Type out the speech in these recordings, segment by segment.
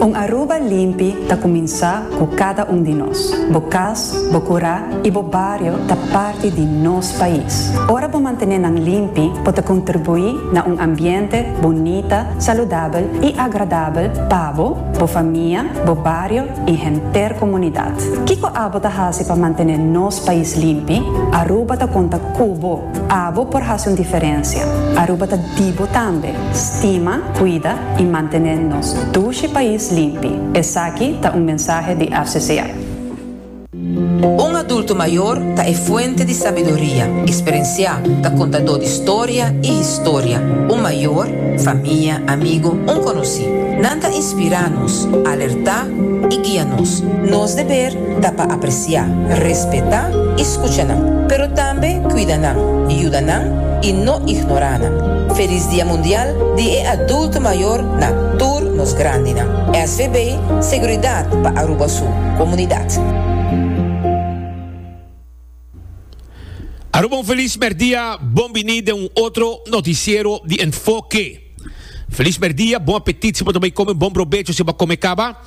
Un Aruba limpi ta kuminsá ku kada un di nos. Bo kas, bo kurá i bo bario ta parti di nos pais. Ora bo mantené nan limpi, bo ta kontribuí na un ambiente bunita, saludabel i agradabel pa bo, bo famia, bo bario i henter komunidat. Kiko abo ta hasi pa mantené nos pais limpi? Aruba ta konta ku bo! Abo por hasi un diferensia. Aruba ta di bo tambe. Stima, kuida i mantené nos dushi pais limpi. Esaki ta un mensahe di RCCA. Un adulto mayor ta e fuente di sabiduria, experencia, ta contador di storia y historia. Un mayor, famia, amigo, un conoci. Nan ta inspira nos, alerta y guia nos. Nos deber Ta pa apresiá, respetá i skucha nan, pero tambe kuida nan, yuda nan i no ignorá nan. Felis Dia Mundial di e Adulto Mayor na tur nos grandinan. SVB, Seguridat pa Aruba su komunidat. Aruba un feliz merdia, bon bini den un otro noticiero di Enfoke. Feliz merdia, bon apetit si bo ta bay come, bon brobecho si bo a come caba.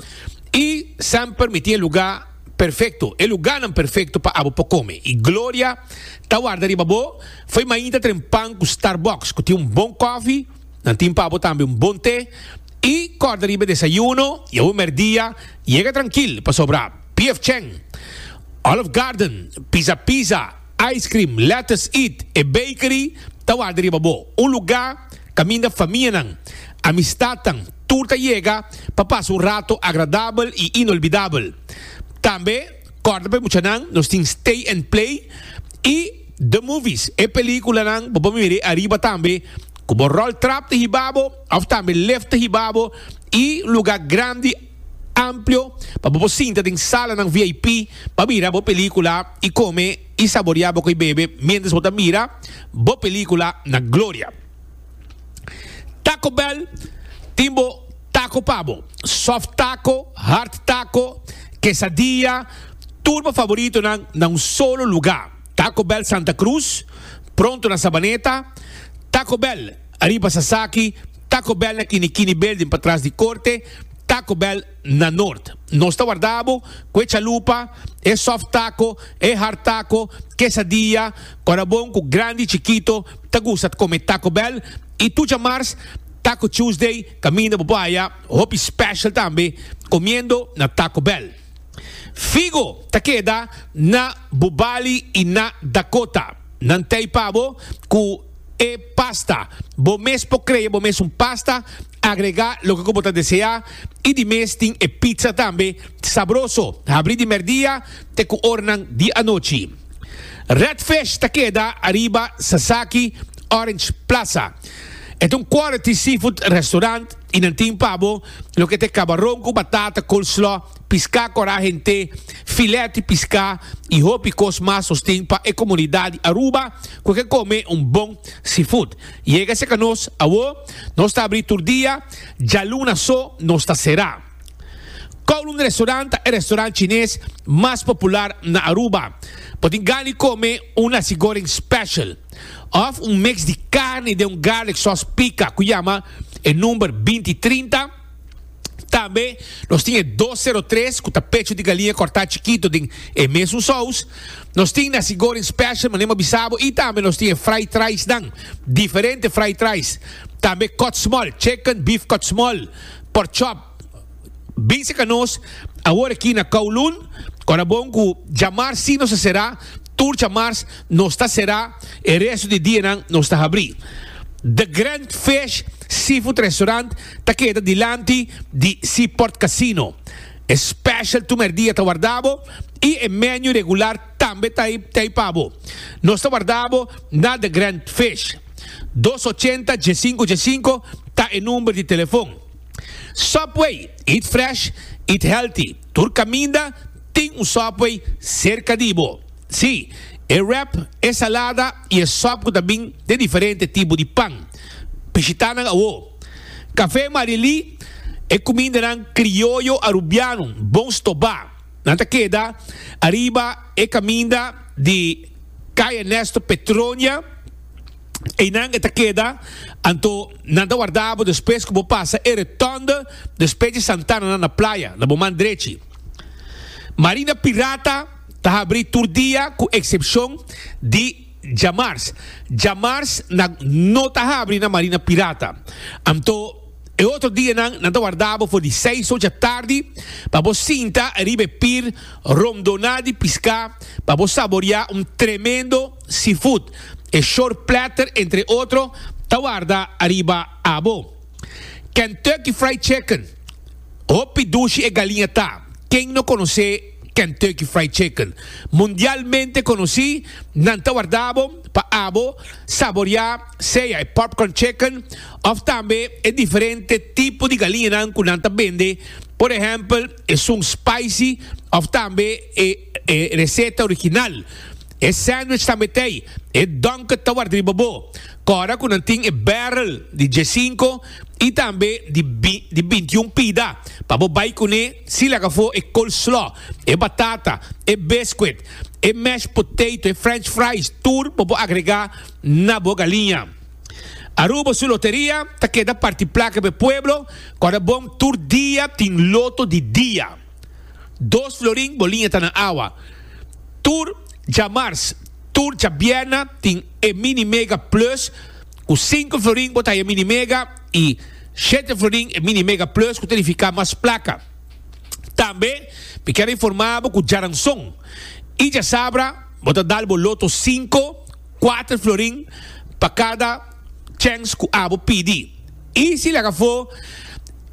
Y semper mi tin e lugar perfecto, e lugarnan perfecto pa abo por come. Y gloria ta warda riba bo, fo'i mainta tren pan cu Starbucks cu tin un bon coffee, nan tin pa abo tambe un bon te. Y corda riba e desayuno y abo merdia yega trankil pasobra. Piefcheng, Olive Garden, Pizza Pizza, Ice Cream, Lettuce Eat, e Bakery ta wak di riba bo. Un lugá kaminda famianan, amistadnan, tur ta yega pa pasa un rato agradabel i inolbidabel. Tambe kòrda pa e muchanan nos tin Stay and Play i The Movies, e pelíkulanan bo por mir'é ariba tambe ku bo ròl trap ta hiba bo òf tambe lift ta hiba bo i un lugá grandi. amplio pa bo por sinta den salanan VIP pa mira bo película y come y saborea bo cu y bebe mientras bo ta mira bo película na gloria. Taco Bell tin bo taco pa bo, soft taco, hard taco, quesadilla, tur bo favoritonan na un solo lugar. Taco Bell Santa Cruz, pronto na Sabaneta, Taco Bell ariba Sasaki, Taco Bell na kini kini building patras di korte Taco Bell na Nort. Nos ta warda bo ku e chalupa, e soft taco, e hard taco, quesadilla, ora bon ku grandi i chikito ta gusta ta kome Taco Bell i tur djamars Taco Tuesday kaminda bo por haya hopi special tambe komiendo na Taco Bell. Figo ta keda na Bubali i na Dakota. Nan tei pa bo ku. E pasta. Bo mes por crea bo mes un pasta, agrega loke cu bo ta desea y di mes tin e pizza tambe sabroso. Habri di merdia te cu oranan di anochi. Red Fish ta keda ariba Sasaki Orange Plaza. E ta un quality seafood restaurant y nan tin pa bo loke te cabaron cu batata coleslaw. Piská kòrá henter, filèt di piská i hopi kos mas sosten pa e komunidat di Aruba ku ke kome un bon seafood. Yega seka nos awó, nos ta abrí tur dia, djaluna so nos ta será. Kowloon Restaurant ta e restaurant chines mas popular na Aruba. Bo tin gan di kome un nasi goreng special òf un mix di karni den un garlic sauce pika ku yama e number binti trinta. Tambe nos tin e dos sero tres ku ta pecho di galiña kòrtá chikito den e mesun sous. Nos tin nasi goreng special mane bo a bisa bo i tambe nos tin e fried rice nan, diferente fried rice. Tambe kòt smòl, chicken, beef kòt smòl, pork chop. Binse ka nos awor aki na Kowloon. Ora bon ku djamars si nos a será, tur djamars nos ta será, e resto di dianan nos ta habrí. The Grand Fish Seafood Restaurant. ta keda dilanti di Seaport Casino. E special tu merdia ta warda bo y e menu regular tambe ta ey pa bo. Nos ta warda bo na The Grand Fish. Dos ochenta dje sinku dje sinku ta e number di telefon. Subway, eat fresh, eat healthy. Tur caminda tin un Subway cerca di bo. Si, e wrap, e salada y e sop cu ta bin den diferente tipo di pan. Bishitanan awó. Kafé Marilí E kumindanan krioyo arubiano bon stobá. Nan ta keda ariba e kaminda di Kay Ernesto Petronia. Einan e ta keda anto nan ta warda bo despues ku bo pasa e Retònde despues di Santana nan na playa na bo man drechi. Marina Pirata ta habrí tur dia ku eksepshon di. Djamars. Djamars nan no ta habri na marina pirata. Anto e otro dia nan, nan ta warda bo for di seis ocha tardi pa bo sinta riba e pir rondona di pisca pa bo saboria un tremendo seafood. E short platter entre otro ta warda ariba abo. Kentucky Fried Chicken. Hopi dushi e galiña ta, ken no conoce? Kentucky Fried Chicken, mundialmente konosí, nan ta warda bo pa abo saboriá sea e popcorn chicken òf tambe e diferente tipo di galiñanan ku nan ta bende, por ehèmpel esun spicy òf tambe e e reseta original. E sandwich tambe t'ei, e Dunkin' ta warda riba bo, kòra ku nan tin e barrel di diesinko i tambe di di bintiun pida pa bo bai kuné. Si laga for e coleslaw, e batata, e biscuit, e mashed potato, e french fries, tur bo por agrega na bo galiña. Aruba su loteria ta keda parti placa p'e pueblo ora bon tur dia tin loto di dia. Dos florin bo liña ta na awa. Tur djamars, tur djabierna tin e mini mega plus cu cinco florin bo ta haya mini mega. y Shete Florin e Mini Mega Plus cu ta edifica mas placa. Tambe mi kier a informa bo cu Djaranson y Djasabra bo ta dal bo loto cinco, cuater florin pa cada chens cu abo pidi. Y si laga afo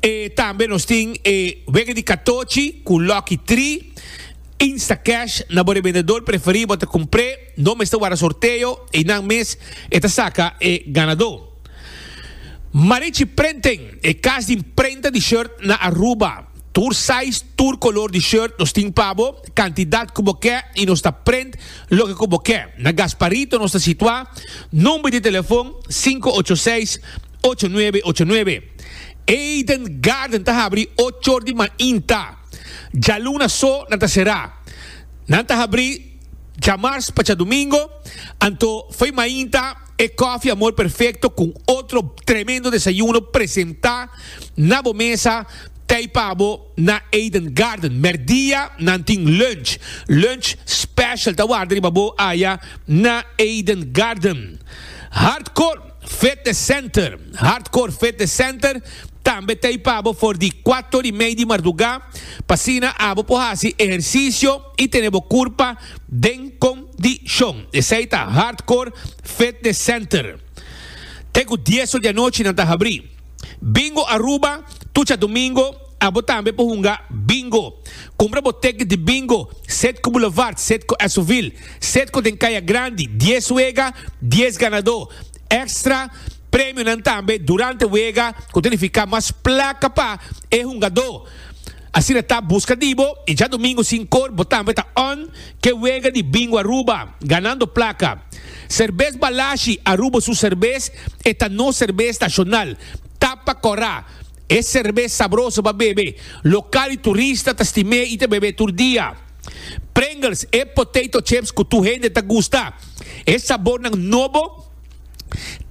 e tambe nos tin e wega di catochi cu lucky tri Instacash na bo revendedor preferi bo ta cumpre. No mester wara sorteo, einan mes e ta saka e ganadó. Marichi Printing, e kas di prenta di shirt na Aruba. Tur sais, tur kolor di shirt nos tin pa bo, kantidat ku bo ke i nos ta print loke ku bo ke. Na Gasparito nos ta situá, nòmber di telefon sinku ocho seis, ocho nuebe ocho nuebe. Eden Garden ta habri ochor di mainta. Djaluna so nan ta será. Nan ta habri. Djamars pa djadumingo, anto foi mainta e Coffee Amor Perfecto cu otro tremendo desayuno presenta na bo mesa tey pa bo na Eden Garden. Merdia nan tin lunch. Lunch special ta warda riba bo aya na Eden Garden. Hardcore Fitness Center, Hardcore Fitness Center tambe tey pa bo for di cuato di mey di marduga p'asina abo por haci ehercicio. I tene bo kurpa den kondishon. Esei ta Hardcore Fitness Center. Te ku dies or di anochi nan ta habrí. Bingo Aruba, Tucha Domingo, Abo tambe por hunga Bingo. Kumpra bo tekit di Bingo, Setco Boulevard, Setco Esovil, Setco den Kaya Grandi, dies wega, dies ganadó. Extra Premionan tambe durante wega ku ta nifiká mas plaka pa e hungadó. Asina ta buska di bo y djadomingo sin cor bo tambe ta on ke wega di Bingo Aruba ganando placa. Cervez Balashi Aruba su cervez e ta nos cervez nacional. Tapa cora e cervez sabroso pa bebe. Local y turista ta stim'é y ta bebe tur dia. Pringles e potato chips cu tur hende ta gusta. E sabornan nobo.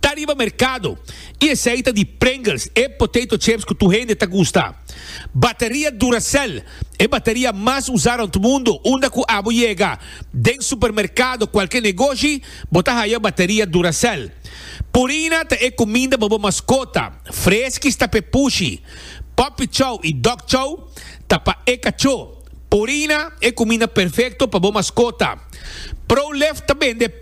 ta riba merkado i esei ta di Pringles, e potato chips ku tur hende ta gusta. Bateria Duracell, e bateria mas usá rònt mundu, unda ku abo yega den supermerkado, kualke negoshi, bo ta haya bateria Duracell. Purina ta e kuminda pa bo maskota, Friskies ta pa e pushi, Puppy Chow i Dog Chow ta pa e kachó. Purina, e kuminda perfekto pa bo maskota. Prolife ta bende.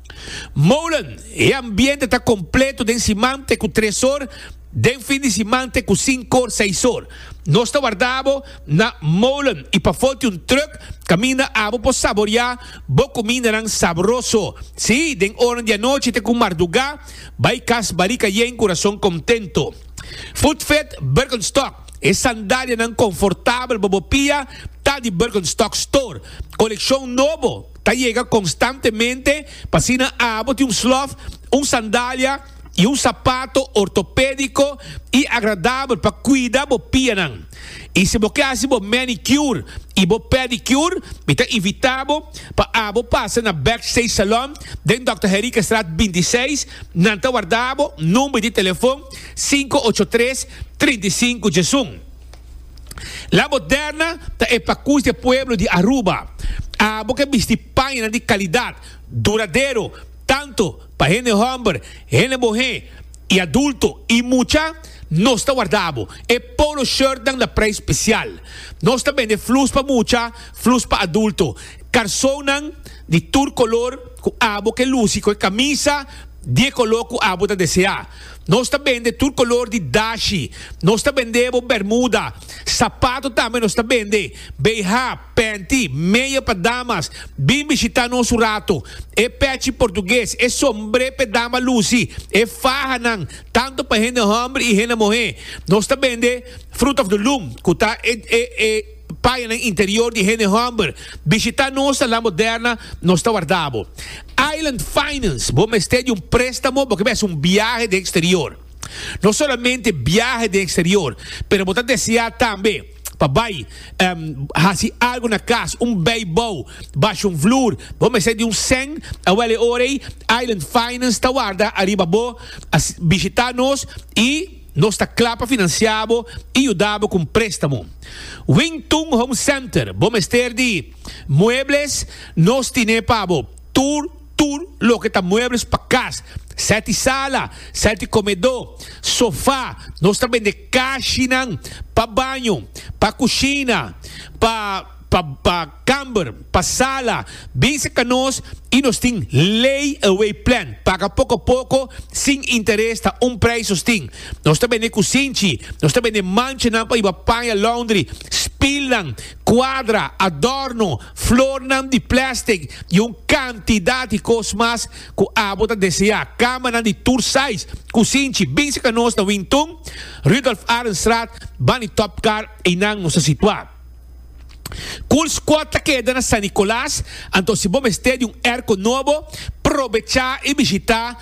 Molen, E ambiente ta completo den simante cu tres or, den fin di simante cu sincor, seis or. Nos ta warda bo na molen y pafo tin un truck caminda abo por saboria bo cumindanan sabroso. Si, den oran di anochi te cu marduga, bay cas barica yen cu razon contento. Footfit Birkenstock, E sandalianan confortabel bo bo pia ta di Birkenstock Store. Coleccion nobo. ta yega konstantemente, pa asina abo tin un slof, un sandalia i un sapato ortopédiko i agradabel pa kuida bo pianan. I si bo ke hasi bo mènikyur i bo pèdikyur, mi ta invitá bo pa abo pasa na Backstage Salon den Dòkter Henriquestraat bintiseis, nan ta warda abo number di telefon sinku ocho tres, trinta i sinku. Djesun. La Moderna ta e pakus di e pueblo di Aruba. Abo ke bisti pañanan di kalidat, duradero, tantu pa hende hòmber, hende bohé i adulto i mucha. Nos ta warda abo. E polo shirtnan na preis spesial. Nos ta bende flus pa mucha, flus pa adulto. Karsonnan di tur kolor ku abo ke lusi ku e kamisa di e kolor ku abo ta deseá. Nos ta bende tur color di dashi. Nos ta bende bo bermuda, sapato tambe nos ta bende, BH, panty, meia pa damas. Bin bishita nos un rato. E pechi portugues, e sombre p'e dama luci, e fahanan, tanto pa hende homber y hende mohe. Nos ta bende Fruit of the Loom, cu ta e, e, e. Paya nan interior di hende homber. Bishita nos na La Moderna, nos ta warda bo. Island Finance, bo mester di un prestamo bo ke mester un biahe den exterior. No solamente biahe den exterior, pero bo ta desea tambe pa bai hasi algo na cas, un beibou, basha un vloer, bo mester di un sèn, awel e ora ei Island Finance ta warda ariba bo. Bishita nos y. Nos ta kla pa finansiá bo i yuda bo ku un préstamo. Wing Tung Home Center, Bo mester di muebles? Nos tine pa bo tur tur loke ta muebles pa kas, sèt di sala, sèt di komedó, sofá. Nos ta bende kashinan pa baño, pa kushina, pa. Pa pa kamber, pa sala, binse ka nos y nos tin lay away plan, paga poco poco sin interes ta un prijs nos tin. Nos ta bende kusinchi, nos ta bende manchanan pa iba paña laundry, spilnan, cuadra, adorno, flornan di plastic y un cantidad di cos mas cu abo ta desea, camanan di tur size, kusinchi, binse ka nos na Wing Tun, Rudolf Arendstraat, Bani Top Car, einan nos ta situa. Cool Squad ta keda na San Nicolas, anto si bo mester di un airco nobo, probecha y bishita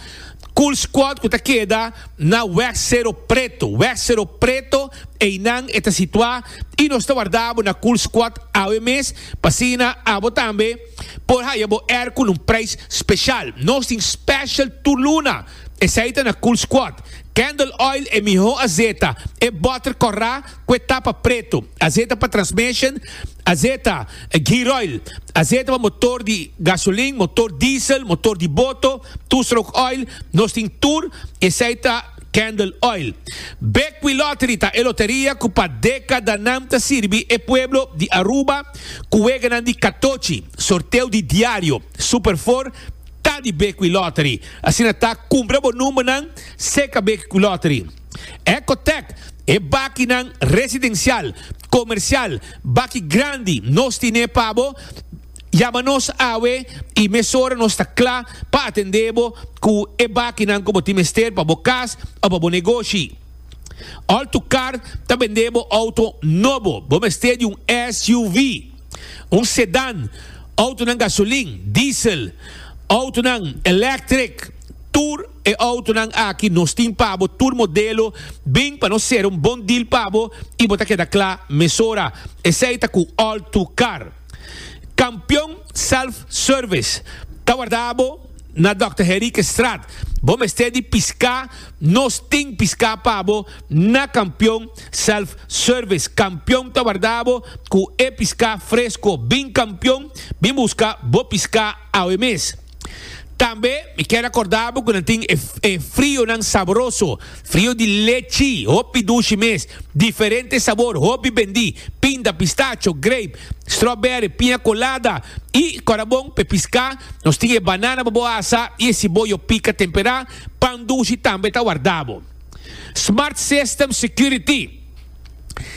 Cool Squad cu ta keda na Weg Cerro Preto. Weg Cerro Preto einan e ta situa y nos ta warda bo na Cool Squad awe mes pa asina abo tambe por haya bo airco na un prijs special. Nos tin special tur luna, esey ta na Cool Squad. Candle Oil e miho azeta, e butter corra Cu e tapa preto. Azeta pa transmission, azeta, gear oil, azeta pa motor di gasolin, motor diesel, motor di boto, two stroke oil, nos tin tur, esey ta candle oil. Bekwee Lottery ta e loteria cu pa decadanan ta sirbi e pueblo di Aruba cu weganan di catochi. Sorteo di diario, Super Four, ta di Bekwee Lottery. Asina ta, cumpra bo numbernan seca Bekwee Lottery. Ecotec, e bakinan residencial, comercial, baki grandi nos tine pa bo, yama nos awe y mesora nos ta cla pa atende bo cu e bakinan cu bo tin mester pa bo cas o pa bo negoshi. Altucar ta bende bo auto nobo, bo mester di un SUV, un sedan, autonan gasolin, diesel, autonan electric, Tur e autonan aki nos tin pa bo, tur modelo, bin pa nos ser un bon deal pa bo y bo ta keda cla mesora. Esey ta cu All Too Car. Campeon Self Service ta warda bo na Dòkter Heriekstraat. Bo mester di pisca, nos tin pisca pa bo na Campeon Self Service. Campeon ta warda bo cu e pisca fresco. Bin Campeon, bin busca bo pisca awe mes. Tambe mi kier a corda bo cu nan tin e frionan sabroso, frio di lechi, hopi dushi mes, diferente sabor, hopi bendi, pinda, pistacho, grape, strawberry, piña colada y corabon pe pisca nos tin e banana pa bo asa y e ciboyo pica tempera, pan dushi tambe ta warda bo. Smart System Security,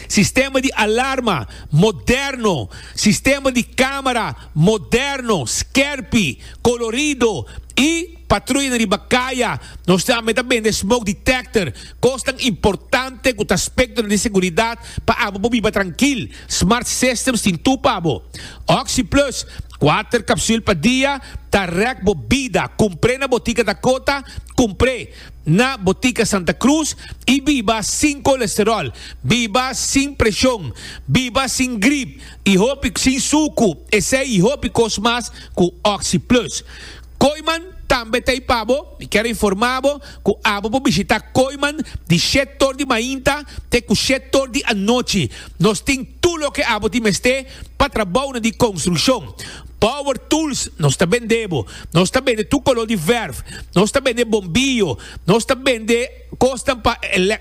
sistema di alarma moderno, sistema di camera, Moderno, skerpi, kolorido i patruya na riba kaya. Nos tambe ta bende smoke detector, kosnan importante ku ta aspektonan di seguridat pa abo por biba trankil. Smart systems tin tur pa bo. OxyPlus, kuater kapsul pa dia, ta rèk bo bida. Kumpr'é na botika Dakota, kumpr'é na botika Santa Cruz i biba sin kolesterol. Biba sin preshon. Biba sin grip. y hopi sin suku, esey y hopi cos mas cu Oxi Plus. Kooiman tambe ta ey pa bo. Mi kier informa bo cu abo por bishita Kooiman di shet tur di mainta te cu shet tur di anochi. Nos tin tur loke abo tin mester pa trabounan di construccion. Power tools nos ta bende bo. Nos ta bende tur color di verf. Nos ta bende bombillo. Nos ta bende. Kosnan pa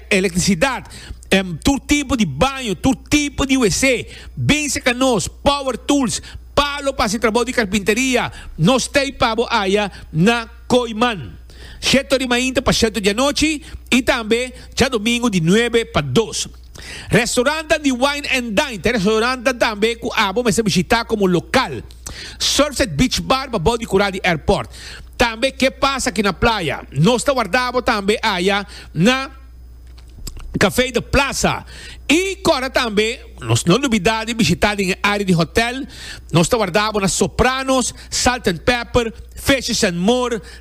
elektrisidat, tur tipo di baño, tur tipo di WC, binse ka nos, power tools, palo pa hasi trabou di karpinteria, no stay pa bo aya na Koiman. Shetto di mainta pa shetto di anochi y tambe djadomingo di nuebe pa dos. Restaurantan di Wine and Dine ta e restaurantan tambe ku abo mester bishitá komo lokal. Surfset Beach Bar pabou di kura di airport. Tambe Ke Pasa Aki na Playa. Nos ta warda bo tambe aya na Café de Plaza. I kora tambe nos no lubidá di bishitá den e área di hotel. Nos ta warda bo na Sopranos, Salt and Pepper, Fishes and More,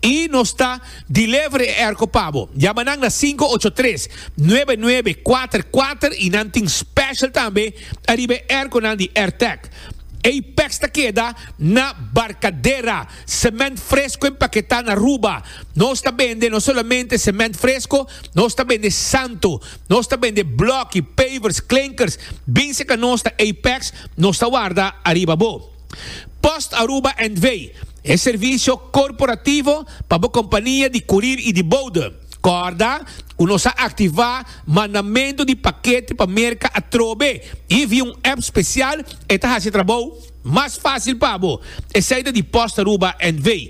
I nos ta deliver e erko pa bo. Yama nan na sinku ocho tres, nuebe nuebe, kuater kuater i nan tin special tambe ariba e erkonan di Airtech. Ei peks ta keda na Barcadera, sement fresko empaketá na Aruba. Nos ta bende no solamente sement fresko, nos ta bende santo. Nos ta bende blòki, pavers, klinkers. Bin serka nos ta ei peks nos ta warda ariba bo. Post Aruba NV. E servisio korporativo pa bo kompania di kurir i di boude. Kòrda ku nos a aktivá mandamentu di pakete pa Merka atrobe i via un app spesial e ta hasi e trabou mas fásil pa bo. Esei ta di Post Aruba NV.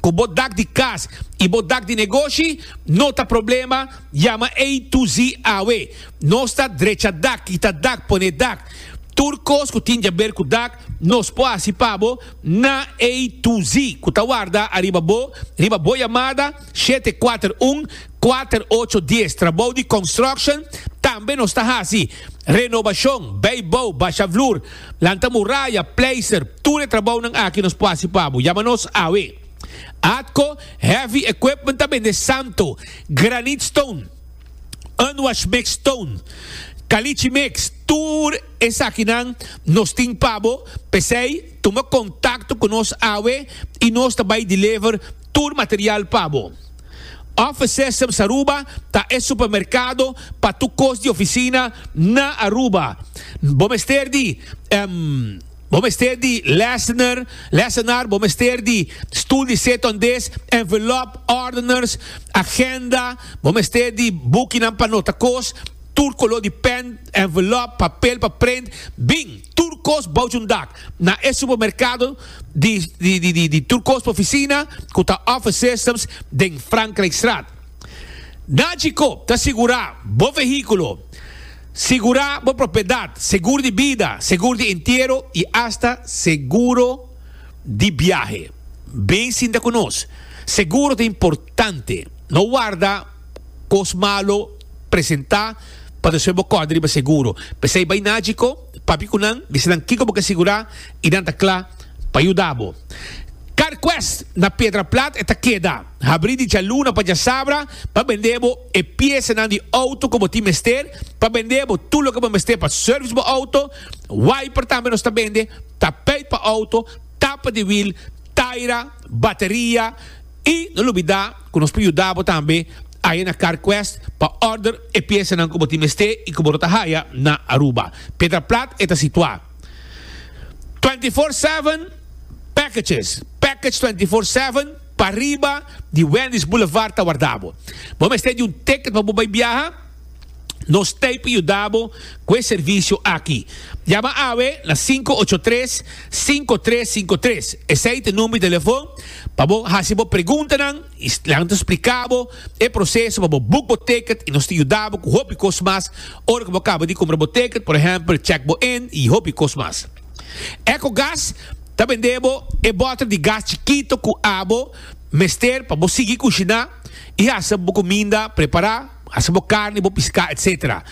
cu bo dak di cas y bo dak di negoshi no ta problema, yama A to Z awe. Nos ta drecha dak, kita dak, pone dak. Tur cos cu tin djaber cu dak nos por haci pa bo na A to Z cu ta warda ariba bo riba bo yamada shete kuater un, kuater ocho dies. Trabou di construction tambe nos ta haci. Renobacion, bay bou, basha vloer, lanta muraya, pleister, tur e trabounan aki nos por haci pa bo. Yama nos awe. Atco Heavy Equipment ta bende santo, granite stone, unwash mix stone, caliche mix, tur esakinan nos tin pa bo, p'esey tuma contacto cu nos awe y nos ta bay deliver tur material pa bo. Offices Sems Aruba ta e supermerkado pa tur kos di ofisina na Aruba. Bo mester di Bo mester di lessener, lessenaar, bo mester di stoel di seton des, envelop, ordeners, agenda, bo mester di bukinan pa nota kos, tur koló di pen, envelop, papel pa prent, bin. Tur kos bouch un dak. Na e supermerkado di tur kos pa ofisina ku ta Office Systems den Frankrijkstraat. Na Djikoop ta sigurá bo vehíkulo, sigurá bo propiedat, seguro di bida, seguro di entiero i asta seguro di biahe. Bin sinta ku nos. Seguro ta importante. No warda. cos malo presenta pa nos fen bo còde riba seguro. P'esei bai na Agiko, papia cu nan, bisa nan kico bo ke sigurá i nan ta cla pa yuda bo. CarQuest na Piedraplat e ta keda. Habrí di djaluna pa djasabra pa bende bo e piesanan di outo cu bo tin mester pa bende bo tur loke bo mester pa service bo outo. Wiper tambe nos ta bende, tapeit pa outo, tapa di wiel, taira, bateria. Y no lubida cu nos por yuda bo tambe aye na CarQuest pa order e piesanan cu bo tin mester y cu bo no ta haya na Aruba. Pedra Plat e ta situa. Twenty Four Seven Packages, Package Twenty Four Seven, pariba di Wendy's Boulevard ta warda bo. Bo mester di un ticket pa bo bay biaha? Nos t'ei pa yuda bo cu e servicio aki. Yama awe na sinku ocho tres, sinku tres sinku tres. Esei t'e number di telefon pa bo haci bo preguntanan y nan ta splica bo e proceso pa bo boek bo ticket y nos ta yuda bo cu hopi cos mas ora cu bo caba di cumpra bo ticket, por ehempel check bo in y hopi cos mas. Ecogas ta bende bo e bottle di gas chikito cu abo mester pa bo sigui cushina y haci bo cuminda prepara. hasi bo carni, bo piscá, etc.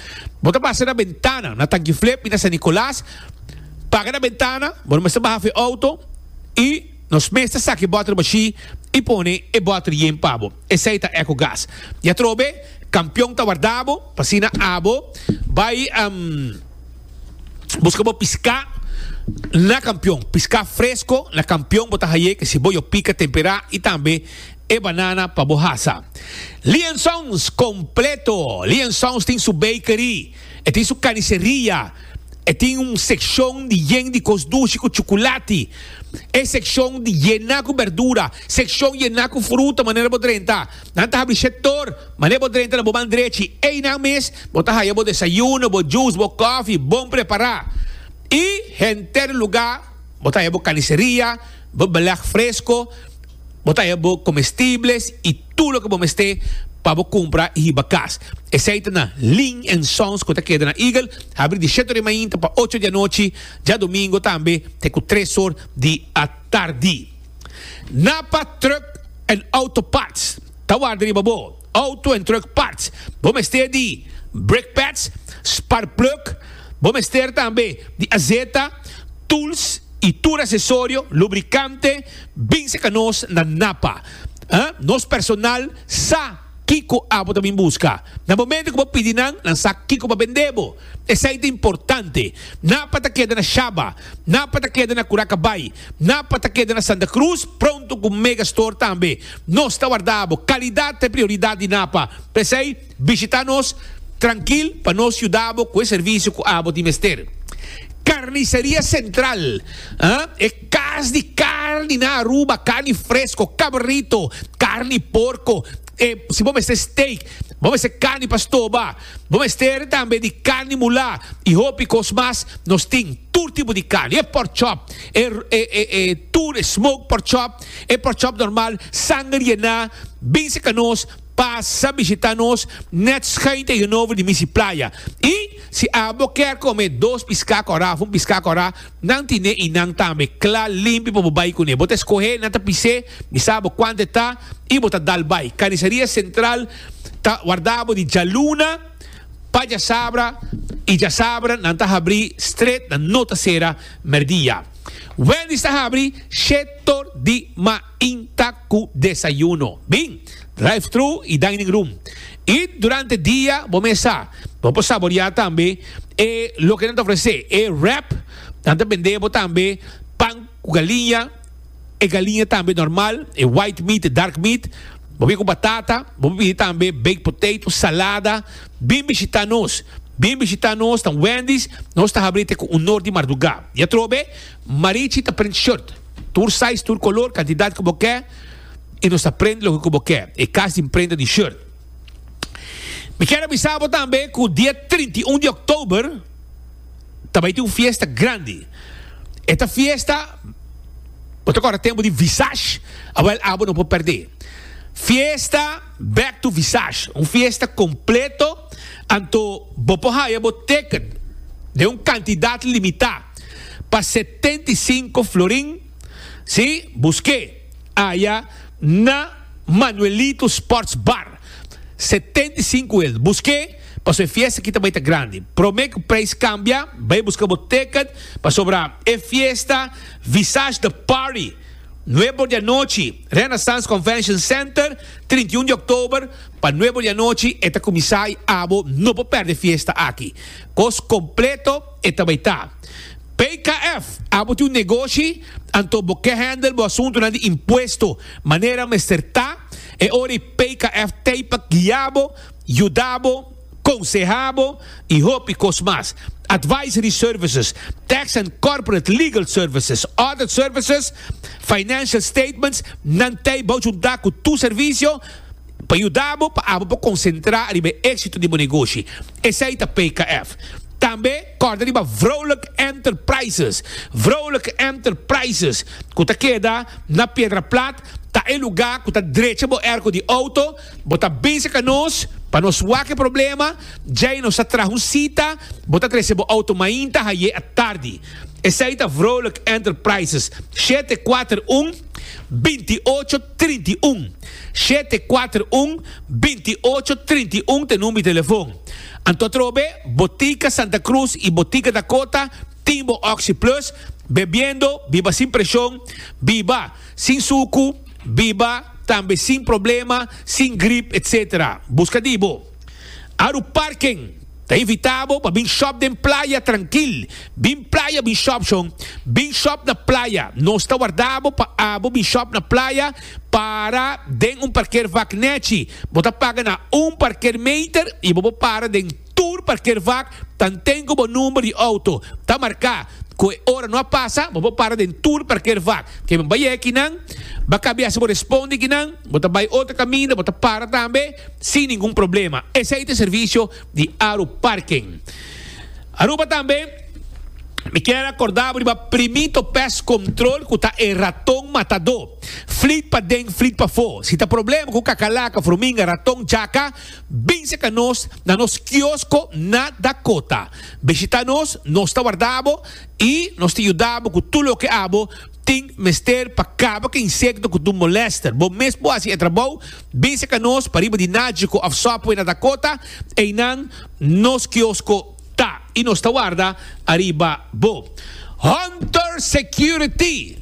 Bo ta pasa na bentana, na Tankiflip y na San Nicolas, paga na bentana, bo no mester baha fu e auto y nos mes ta saki e boter bashi y pone e boter yen pa bo. Esey ta Ecogas. Y atrobe, campeon ta warda bo, pasina abo bay busca bo piscá na campeon. Piscá fresco na campeon bo ta haye, kesi boyo pica, temperá y tambe. E banana pa bo hasa. Liansons completo. Liansons tin su bakery. E tin su carniceria. E tin un seccion di yen di cos dushi cu chuculati. E seccion di yena cu berdura. Seccion yena cu fruta manera bo drenta. Nan ta habri shet tor. Manera bo drenta na bo ban drechi. Eynan mes bo ta haya bo desayuno, bo juice, bo coffee bon prepara. Y henter lugar bo ta haya bo carniceria, bo beleg fresco. Bo ta haya bo comestibles y tur loke bo mester pa bo cumpra y hiba cas. Esey ta na Ling and Sons cu ta keda na Eagle, habri di shet ora mainta pa ocho di anochi, djadomingo tambe te cu tres or di atardi. Napa Truck and Auto Parts ta warda riba bo auto en truck parts. Bo mester di brake pads, spark plug, bo mester tambe di azeta, tools y tur accesorio, lubricante, Binse ca nos na Napa. Nos personal sa kico abo ta bin busca. Na momento cu bo pidi nan, nan sa kico pa bende bo. Esai ta importante. Napa ta keda na Shaba. Napa ta keda na Curacabai. Napa ta keda na Santa Cruz, pronto cu Megastore tambe. Nos ta warda abo. Calidad ta e prioridad di Napa. P'esai. Bishita nos trankil pa nos yuda bo ku e servisio ku abo tin mester. Karniseria Sentral, e kas di karni na Aruba, karni fresko, kabrito, karni porko, e si bo mester steak, bo mester karni pa stoba, bo mester tambe di karni mulá i hopi kos mas, nos tin tur tipo di karni, e pork chop, e tur e smoke pork chop, e pork chop normal, sanger yená, bin serka nos. Pasa bishita nos net schuin tegenover di Misi Playa y si abo kier come dos pisca cora of un pisca cora nan tine y nan tambe cla limpi pa bo bay cune. Bo ta escohe nan ta pise mi sa abo cuanta e ta y bo ta dal bay. Carniceria Central ta warda abo di djaluna pa djasabra y djasabra nan ta habri stret nan no ta cera merdia. Wendy's ta habri she tor di ma. Tin tak cu desayuno, bin, drive-thru y dining room. Y durante dia bo mesa bo por saborea tambe e loke nan ta ofrece, e wrap, nan ta bende bo tambe pan cu galiña, e galiña tambe normal, e white meat, e dark meat, bo bini cu batata, bo por pidi tambe baked potato, salada, bin bishita nos, bin bishita nos, ta un Wendy's, nos ta habri te cu un nor di marduga. Y atrobe, Marichi ta print shirt. Tur size, tur color, cantidad cu bo ke y nos ta prende loke cu bo ke. E cas di imprenta di shirt. Mi kier a bisa bo tambe cu dia trinta y un di oktober ta bay tin un fiesta grandi. E ta fiesta, bo ta corda tempo di Visage? A wel abo no por perde. Fiesta Back to Visage. Un fiesta completo anto bo por haya bo ticket den un cantidad limita. pa setenta i sinku florin, si, busk'é aya na Manuelito Sports Bar, setenta i sinku el, busk'é paso e fiesta aki ta bai ta grandi, promé ku preis kambia, bai buska bo tèkèt, pasobra e fiesta Visage The Party, nuebe or di anochi, Renaissance Convention Center, trinta i un di òktober, pa nuebe or di anochi e ta kuminsá i abo no por pèrdè fiesta aki, kos kompleto. e ta bai ta. PKF, abo tin un negoshi, anto bo ke handle bo asuntunan di impuesto manera mester ta, e ora ei PKF tei pa guia bo, yuda bo, konseha bo i hopi kos mas. Advisory services, tax and corporate legal services, audit services, financial statements, nan tei bou junta ku tur servisio pa yuda bo pa abo por konsentra riba e éksito di bo negoshi. Esei ta PKF. Tambe kòrda riba Vrolijk Enterprises. Vrolijk Enterprises, ku ta keda na Piedraplat, ta e lugá ku ta drecha bo erko di outo, bo ta bisa ka nos pa nos wak e problema, djei nos ta traha un sita, bo ta trese bo outo mainta haié atardi. Esei ta Vrolijk Enterprises, shete kuater un binti ocho trinta i un, shete kuater un, binti i ocho, trinta i un ta number di telefon. Anto atrobe Botica Santa Cruz y Botica Dakota tin bo Oxy Plus, bebiendo, biba sin presion, biba sin sucu, biba tambe sin problema, sin grip etc. Busca di bo. Aru parken ta invitá bo pa bin shòp den playa trankil. Bin playa bin shòp shon. Bin shòp na playa. Nos ta warda bo pa abo bin shòp na playa para den un parker vak nèchi. Bo ta paga na un parker meter i bo por para den tur parker vak tanten ku bo number di outo ta marká. Ku e ora no a pasa, bo por para den tur parker vak. Ke men bai e kinan? Ba kabi hasi bo respondi kinan. Bo ta bai otro kaminda, bo ta para tambe. sin ningun problema. Esei ta e servicio di Aru Parking. Aruba tambe Mi kier a kordabo riba primito pest control ku ta e raton matadó. Flit pa den, flit pa fó. Si ta problema ku kakalaka, fruminga, raton, jaka, binse ka nos na nos kiosko na Dakota. Bishita nos, nos ta wardabo i nos ta yudabo ku tur loke abo. Tin mester pa kaba ku insekto ku dun molester. Bo mes por hasi e trabou, Bin seka nos pariba di Nagico of Subway na Dakota, einan nos kiosko ta i nos ta warda ariba bo. Hunter Security,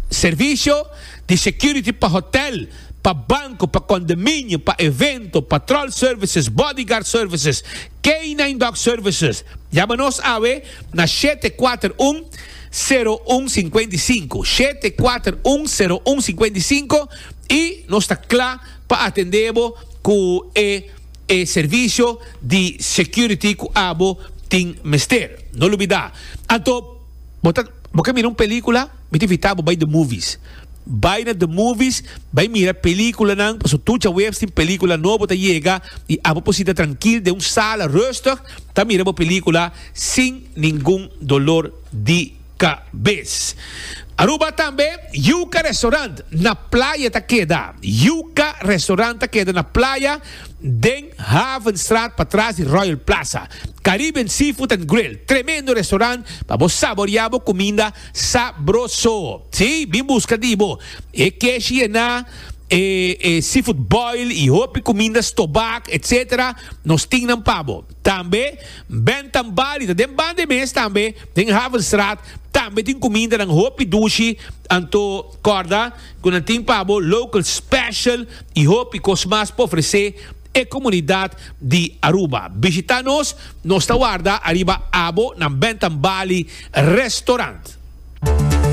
Servisio di security pa hotel, pa banko, pa kondominio, pa evento, patrol services, bodyguard services, K-nine Dog Services, yama nos awe na shete kuater un, seru un sinkuenta i sinku, shete kuater un, seru un sinkuenta i sinku, i nos ta kla pa atendé bo ku e e servisio di security ku abo tin mester. No lubidá. Anto bo ta bo ke mira un pelíkula? Mi ta invitá bo bai The Movies. Bai na The Movies, bai mira películanan, pasobra tur djaweps tin película nobo ta yega i abo por sinta trankil den un sala rustig ta mira bo película sin ningun dolor di kabes. Aruba tambe, Yuca Restaurant na playa ta keda. Yuca Restaurant ta keda na playa den Havenstraat patras di Royal Plaza. Caribbean Seafood and Grill, tremendo restaurant pa bo saboreá bo kuminda. Sabroso! Sí, mi busca di bo. E keshi e na, e e seafood boil y hopi cuminda stobak etc. Nos tin nan pa bo. Tambe Ben Tambali ta den banda e mes tambe, den Havenstraat. Tambe tin cumindanan hopi dushi. Anto corda cu nan tin pa bo local special y hopi cos mas pa ofrece. e comunidad di Aruba. Bishita nos, nos ta warda ariba abo nan Bentham Bali Restaurant.